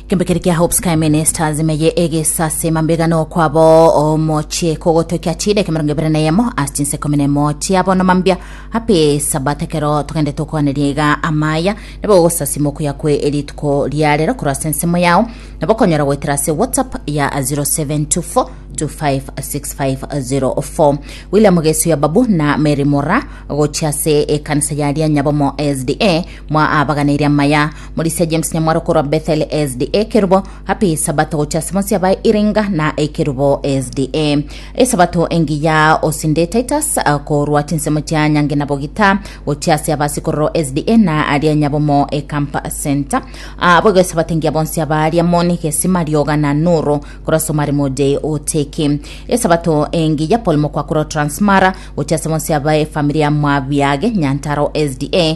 Kembe kere kia Hope Sky Ministers meye egesasima mbega nokwabo omochie kogotokia chida ekemerongo ebere na eyemo ase chinse ikomi na emo chia bono mambia happy sabat ekero togende tokwaneria iga amaya nabo ogosasima okuya kwe erituko ria rero korwa ase ensemo yao nabo okonyora goetera ase whatsapp ya 0724 256504 William Gesu ya Babu na Mary Mora gochia ase ekanisa ya Rianyabomo SDA mwa abaganeirie amaya Morisia James Nyamwaro korwa Bethel SDA Kerubo, Happy Sabato gochia ase bonsi abae Iringa na Ekerubo SDA. Esabato engiya osinde Titus eh, korwa chinsemo chia Nyange na Bogita gochia ase aba Sikororo SDA na aria Nyabomo e Camp Center. Ah, boigo esabato engiya bonsi aba aria Moni, Gesima, Rioga na Nuru korwa Somari Mode Oteki. Esabato engiya Paul Mokwa korwa Transmara gochia ase bonsi abae efamiri ya Mwabiage Nyantaro SDA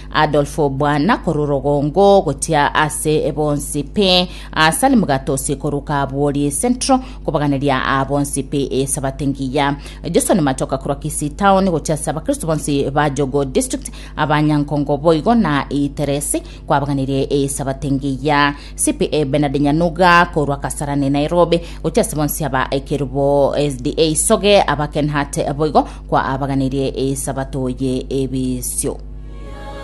Adolfo bwana korwa orogongo gochia ase bonsi pi asali mugatosi korwa kabwori central kobaganeria aa bonsi pi esabate ngiya Joshua ni machoka korwa Kisii town gochia ase abakristo bonsi ba Jogo district abanyankongo boigo na iteresi kwabaganirie esabate ngiya CPA Bernard Nyanuga korwa Kasarani Nairobi gochia ase bonsi aba ekerubo SDA Soge aba Kenhat boigo kwa abaganirie esabato ye ebisio